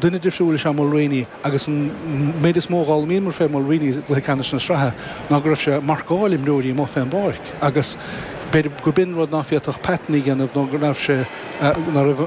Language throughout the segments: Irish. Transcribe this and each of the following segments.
Duine difriúil is ea Mulreany agus an méid is mó a thaitin liom fé Mulreany i gcluiche ceannais na sraithe ná go raibh sé ag marcáil imreoirí amuigh fén bpáirc agus b'fhéidir gur b'in rud ná féadfadh Patton a dhéanamh nó go raibh sé, ná raibh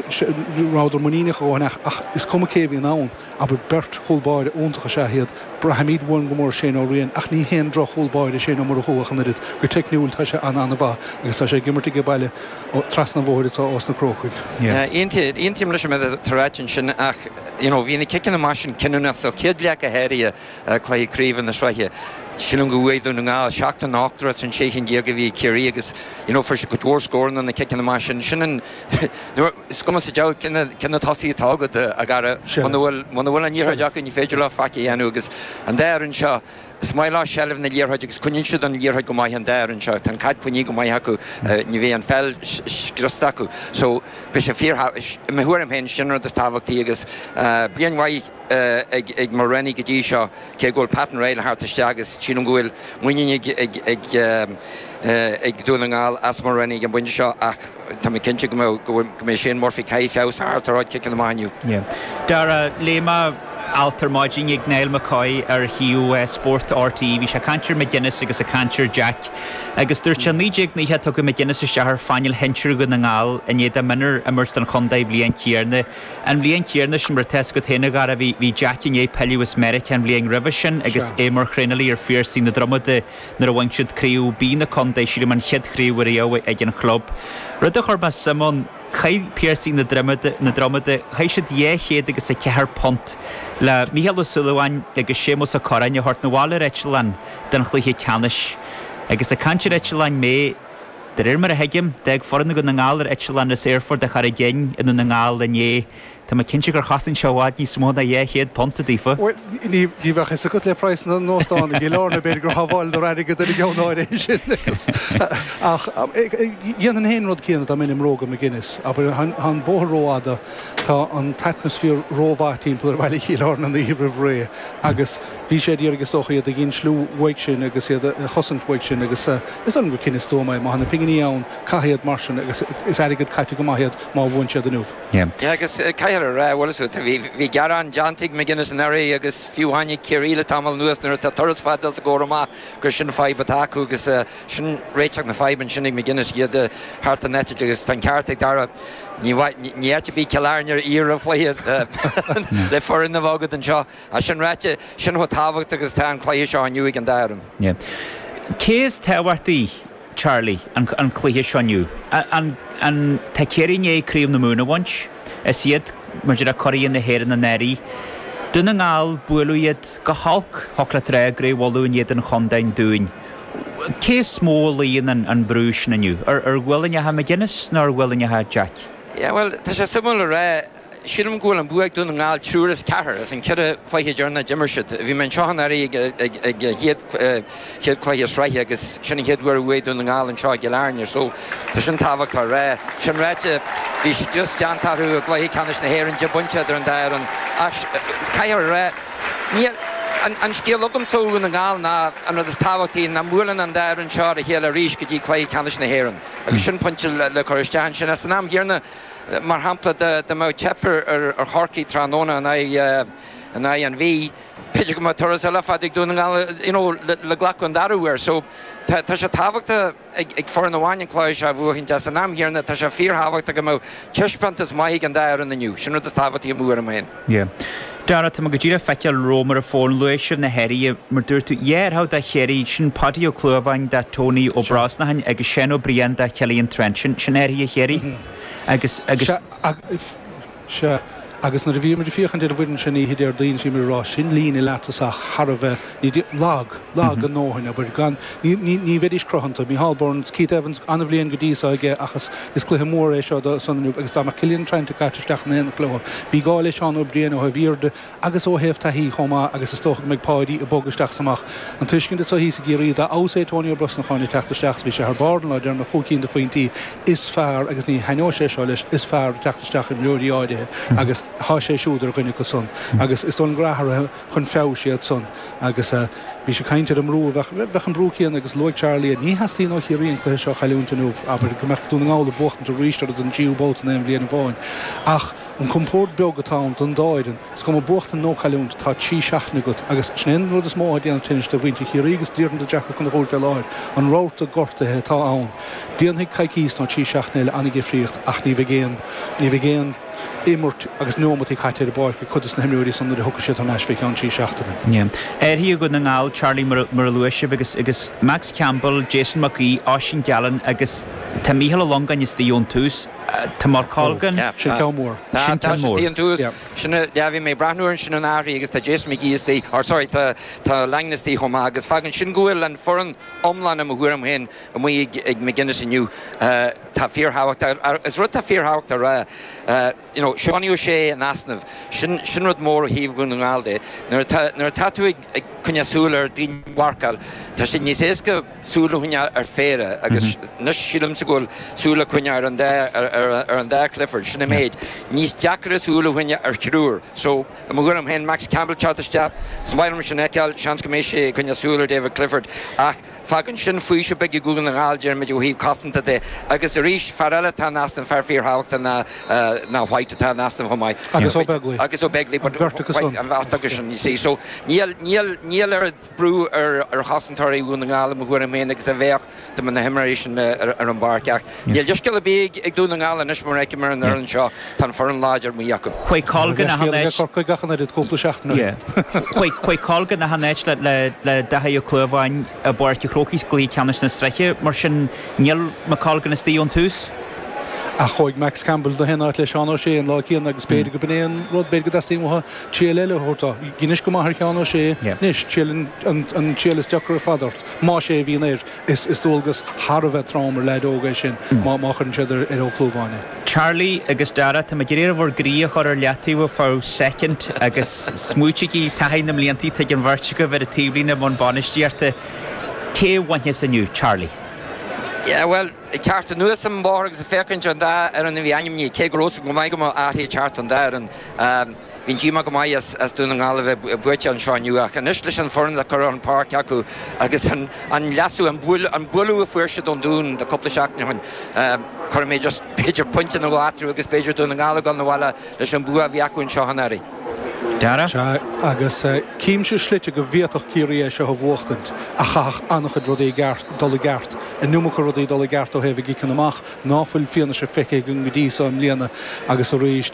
sé, rabhadar muiníneach go maith as ach is cuma cé a bhíonn ann abair beirt chúl báire iontach is ea iad, braithimid uainn go mór Shane Ó Riain ach ní haon droch chúl báire Shane Ó Murchú ach an oiread go teicniúil tá sé an-an-mhaith agus tá sé ag imirt aige baile trasna an bhóthair ós na Crócaigh. Yeah. Aontaím leis an méid atá ráite ansin ach you know bhí na ciceanna amach sin cinniúnach sa chéad leath go háirithe i gcluiche craoibhe na sraithe. Sílim go bhuaigh Dún na nGall 7 den 18 rud san 16 cinn a bhí ag Ciarraí agus you know fuair siad cuid mhór scóranna ó na ciceanna amach sin. Sin an you know is cuma sa deabhal cé na cé na tosaithe atá agat a Dharragh muna bhfuil muna bhfuil an liathróid acu ní féidir leo faic a dhéanamh agus an dá fhoireann seo Is maith leo seilbh na liathróide agus coinníonn siad an liathróid go maith an dá fhoireann seo. Tá an caid coinnithe go maith acu. Ní bheidh an pheil scriosta acu. So bhí sé fíor, i mo thuairim féin, sin an rud is tábhachtaí agus bliain mhaith ag Mulreany go dtí seo cé go bhfuil Patton réidh le theacht isteach agus sílim go bhfuil muinín ag Dún na nGall as Mulreany ag an bpointe seo ach Tá mé cinnte go mbeadh, go mbeidh Shane Murphy caithfidh feabhas a theacht ar a chuid ciceanna amach inniu. Yeah. Dara, léigh mé alt ar maidin ag Niall McCoy ar shuíomh spóirt RTÉ. Bhí sé ag caint ar McGuinness agus ag caint ar Jack agus dúirt sé 1992 tugadh McGuinness isteach ar phainéal shinsir Dhún na nGall i ndiaidh dó mionúr a imirt don chontae. An bhliain chéanna. An bhliain chéanna sin, mar atá a fhios agat féin a Dhara, bhí Jack i ndiaidh pilleadh as Meiriceá an bhliain roimhe sin agus é mar thraenálaí ar Phiarsaigh na Dromoda nuair a bhain siad Craobh B na Contae, sílim an chéad chraobh riamh ag an chlub. Rud a chuir mé suim ann, chaith Piarsaigh na Dromoda, na Dromada, chaith siad dhá chéad agus a ceathair punt le Mícheál Ó Súilleabháin agus Séamus Ó Corráin a thabhairt 'na bhaile ar eitleán don chluiche ceannais. Agus ag caint ar eitleáin mé, de réir mar a thuigim, d'fhág foireann Dhún na nGall ar eitleán as Aerfort Charraig Fhinn i nDún na nGall inné. Tá mé cinnte gur chosain seo i bhfad níos mó ná dhá chéad punt, daofa. Bhuel, ní bheadh 'fhios agat le praghas na n-óstán i gCill Airne, b'fhéidir gur shábháileadar airgead ar an gceann áirithe sin agus, ach, dhéanfainn féin an rud céanna dá mbeinn i mbróga McGuinness, abair, tá an bóthar rófhada, tá an t-atmaisféar rómhaith timpeall ar Bhaile Chill Airne an oíche roimh ré agus bhí sé ag iarraidh, is dócha, iad a insliú uaidh sin agus iad a chosaint uaidh sin agus is dóigh liom gur cinneadh stuama é, má tá na pinginí ann, caith iad mar sin agus is airgead caite go maith iad má bhuann siad inniu. Ní. Agus caithfear a rá, bhuel, bhí gearán déanta ag McGuinness anuraidh agus fiú amháin ag Ciarraí le tamall anuas nuair atá turas fada os a gcomhair amach gur sin fadhb atá acu agus sin réiteach na faidhbe ansin ag McGuinness iad a thabhairt ar eitilt agus tá an ceart ag Dara, ní áit a bhí i gCill Airne aréir roimh an chluiche le foireann a bheith agat anseo. Ach sin ráite, sin chomh tábhachtach agus atá an cluiche seo inniu ag an dá fhoireann. Cé is tábhachtaí? Charlie, An an cluiche seo inniu? An tá Ciarraí i ndiaidh Craobh na Mumhan a bhaint? Is iad, mar a déarfá curaidh na hÉireann, anuraidh. Dún na nGall, buaileadh iad go holc, thug le trá i gCraobh Uladh in éadan Chontae an Dúin. Cé is mó a luíonn an an brú sin inniu? Ar ar ghuailneacha McGuinness nó ar ghuailneacha Jack? Yeah, bhuel, tá sé suimiúil a rá. Sílim go bhfuil an bua ag Dún na nGall trí as ceathair as an cheithre chluiche deireanach a d'imir siad. Bhí mé anseo anuraidh ag an chéad chéad chluiche sraithe agus sin an chéad uair a bhuaigh Dún na nGall anseo i gCill Airne so tá sin tábhachtach a rá. Sin ráite, bhí scrios déanta orthu i gcluiche ceannais na hÉireann, deich bpointe idir an dá fhoireann ach caithfear a rá, níl An scéal agamsa ó Dhún na nGall ná an rud is tábhachtaí nach mbuaileann an dá fhoireann seo ar a chéile arís go dtí cluiche ceannais na hÉireann agus sin pointe le cur isteach ansin san am gcéanna. Mar shampla, dá mbeadh teip ar Chorcaigh tráthnóna in aghaidh an Mhí, b'fhéidir go mbeadh turas eile fada ag Dún na nGall you know le glacadh an dara uair. So tá sé tábhachtach ag foireann amháin an cluiche seo a bhuachaint ach san am chéanna, tá sé fíorthábhachtach go mbeadh taispeántas maith ag an dá fhoireann inniu. Sin rud is tábhachtaí i mo thuairim féin. Yeah. Dara, Tá mé go díreach ag feiceáil romham ar an bhfón, luaigh sibh na hathruithe, mar dúirt tú, déarfá, do Chiarraí, sin Paudie Ó Clúmháin, do Tony Ó Brosnacháin agus Seán Ó Briain, do Cillian Trant, sin, sin athruithe Chiarraí. Agus, agus. Sea, agus nuair a bhíomar ag féachaint ar an bhfoireann sin oíche Déardaoin, bhíomar ag rá, sin líne leath-thosach thar a bheith. Lag, lag a ndóthain, abair. Gan, ní, ní, ní bheidís cruthanta. Micheál Burns, Keith Evans, an-bhliain go dtí seo aige ach is, is cluiche mór é seo dó san inniu agus dá mbeadh Cillian Trant caite isteach in éineacht leo. Bhí gá le Seán Ó Briain ó thaobh airde agus ó thaobh taithí chomh maith agus is dócha go mbeidh Páidí ag bogadh isteach is amach. An tuiscint atá thíos i gCiarraí, dá fheabhas é Tony Ó Brosnacháin ag teacht isteach is bhí sé thar barr an lá deireanach, cúig cinn de phointí, is fearr, agus ní thaitneoidh sé seo leis, is fearr ag teacht isteach imreoirí áirithe agus tá sé siúd ar dhuine acu san agus is dóigh liom go rachaidh, chun feabhais iad san agus bhí sé ag caint ar an mbrú a bheadh, bheadh an brú céanna agus luaigh Charlie é, ní theastaíonn ó Chiarraí an cluiche seo a chailliúint inniu, abair, go mbeadh Dún na nGall ag buachtaint arís orthu don dtríú babhta in aon bhliain amháin ach an compord beag atá ann don dá fhoireann, is cuma buachtaint nó cailliúint, tá trí seachtaine agat agus sin é an rud is mó atá ag déanamh tinnis do mhuintir Chiarraí agus díreach do Jack Ó Conchúir fé láthair, an rabharta gortaithe atá ann, déanfaidh coicíos nó trí seachtaine eile an-difríocht ach ní bheidh aon, ní bheidh aon. imirt agus neomataí caite ar an bpáirc ag cuid de na himreoirí san nuair a thiocfaidh siad thar n-ais fé cheann trí seachtaine. Athruithe ag Dún na nGall, Charlie mar a luaigh sibh, agus Max Campbell, Jason Mac Aoidh, Oisín Gallen agus tá Mícheál Ó Longáin istigh ón tús, tá Michael Langan. Sin ceann mór. Tá, tá sé istigh ón tús. Sin a, yeah, bhí mé ag breathnú ar sin na hathruithe agus tá Jason McGee istigh, or sorry tá Langan istigh chomh maith agus fágann sin go bhfuil an foireann iomlán i mo thuairim féin, amuigh ag McGuinness inniu atá fíorthábhachtach. Is rud atá fíorthábhachtach a rá, you know, Seánie O'Shea in easnamh, sin, sin rud mór ó thaobh Dhún na nGall de. Nuair atá, nuair atá tú ag, ag coinneáil súil ar daoine a mharcáil, tá sé níos éasca súil a choinneáil ar phéire agus anois sílimse go bhfuil súil le coinneáil ar an dá, ar, ar, ar an dá Clifford, sin an méid. Níos deacaire súil a choinneáil ar thriúr. So, i mo thuairim féin, Max Campbell teacht isteach, is maith liom sin a fheiceáil, seans go mbeidh sé ag coinneáil súil ar David Clifford ach, Fágann sin faoiseamh beag ag Dún na nGall, déarfaimid, ó thaobh cosanta de. Agus arís, fear eile atá in easnamh, fear fíorthábhachtach ná White atá in easnamh chomh maith. Agus Ó Beaglaoi. Agus Ó Beaglaoi. An bheirt acu san. An bheirt acu sin, you see. So, níl oiread brú ar chosantóirí Dhún na nGall, i mo thuairim féin, agus a bheadh dá mbeadh na himreoirí sin ar an bpáirc. Ach. Níl leithscéal ar bith ag Dún na nGall anois, mar a fheicim ar an fhoireann seo, tá an foireann láidir amuigh acu. Chuaigh Colgan gach aon áit. Cha raibh leithscéal ag Corcaigh ach an oiread cúpla seachtain ó shin. Chuaigh Colgan gach aon áit le Daithí Ó Clúmháin i bPáirc a' Chrócaigh sa gcluiche ceannais na sraithe, mar sin níl Mac Colgan istigh ón tús. Ach chuaigh Max Campbell gach aon áit le Seán O'Shea an lá céanna agus b'fhéidir gurb in é an rud, b'fhéidir go dteastaíonn uathu triail eile a thabhairt dó. Dhein sé go maith ar Sheán O'Shea anois, triail an triail is deacra ar fad ort, más é a bhíonn air. Is dualgas thar a bheith trom ar leaid óg é sin má chuireann siad ar Ó Clúmháin é. Charlie agus Dara, tá mé ag iarraidh oraibh bhur gcroí a chur ar leataobh fá soicind agus smaoitigí taithí na mblianta atá ag an bheirt agaibh ar an taobhlíne i mbun bainistíochta. Cé a bhainfeas inniu? Charlie. Yeah, bhuel, ag teacht anuas an bóthar agus ag féachaint ar an dá fhoireann a bhí ainmnithe, cé go raibh a fhios agam go maith go mbeadh athruithe ag teacht don dá fhoireann, Bhí díomá go maith as Dún na nGall a bheith buailte anseo inniu ach anois leis an bhfoireann le cur ar an bpáirc acu agus an léasadh, an bualadh a fuair siad ón Dún le cúpla seachtain ó shin, cuirfidh mé just b'fhéidir pointe nó dhó eatarthu agus b'fhéidir Dún na nGall ag dul 'na bhaile leis an bua a bhí acu anseo anuraidh. Sea, agus címse slite go bhféadfadh Ciarraí é seo a bhuachtaint ach chaithfeadh an-chuid rudaí i gceart, dul i gceart, an iomarca rudaí dul i gceart ó thaobh a gciceanna amach ná fuil fianaise feicthe againn go dtí so i mbliana agus arís,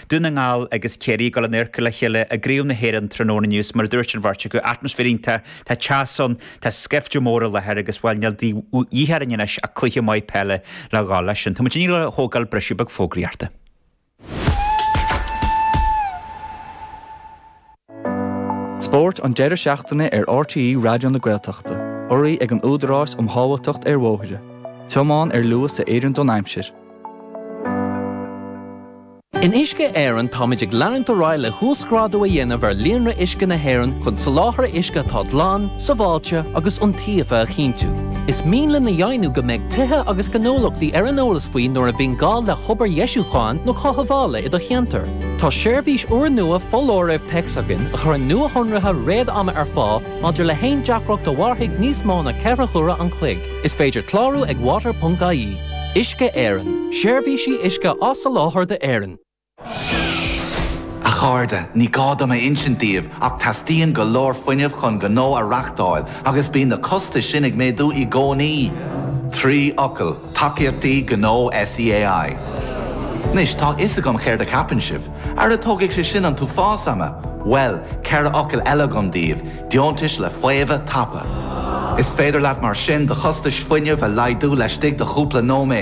Dún na nGall agus Ciarraí ag dul in oirchill a chéile i gCraobh na hÉireann tráthnóna inniu is mar a dúirt an bheirt acu, atmaisféar iontach, tá teas ann, tá scaifte mór i láthair agus, bhuel, níl de dhíth orainn anois ach cluiche maith peile le dhul leis sin. Tá muidinne ag dul a thógáil briseadh beag fógraíochta. Spórt an deireadh seachtaine ar RTÉ Raidió na Gaeltachta, urraithe ag an Údarás um Shábháilteacht ar Bhóithre, tiomáin ar luas a oireann don aimsir. In Uisce Éireann táimid ag leanúint ar aghaidh le huasghrádú a dhéanamh ar líonra uisce na hÉireann chun soláthar uisce atá glan, sábháilte agus iontaofa a chinntiú. Is mian linn a dheimhniú go mbeidh tithe agus gnólachtaí ar an eolas faoi nuair a bhíonn gá le hobair dheisiúcháin nó chothabhála i do cheantar. Tá seirbhís úrnua foláirimh téacs againn a chuireann nuashonruithe réad-ama ar fáil maidir le haon deacracht a mhairfidh níos mó ná ceithre huaire an chloig. Is féidir clárú ag water.ie. Uisce Éireann, seirbhísí uisce á soláthar d'Éirinn. A chairde, ní gá dom a insint daoibh, ach teastaíonn go leor fuinnimh chun gnó a reáchtáil agus bíonn na costais sin ag méadú i gcónaí. Trí fhocal. Tacaíochtaí Gnó SEAI. Anois, tá a fhios agam céard a cheapann sibh. Ara tógfaidh sé sin an t-uafás ama! Bhuel, ceithre fhocal eile agam daoibh, deontais le faomhadh tapa. Is féidir leat mar sin do chostais fuinnimh a laghdú laistigh de chúpla nóiméad.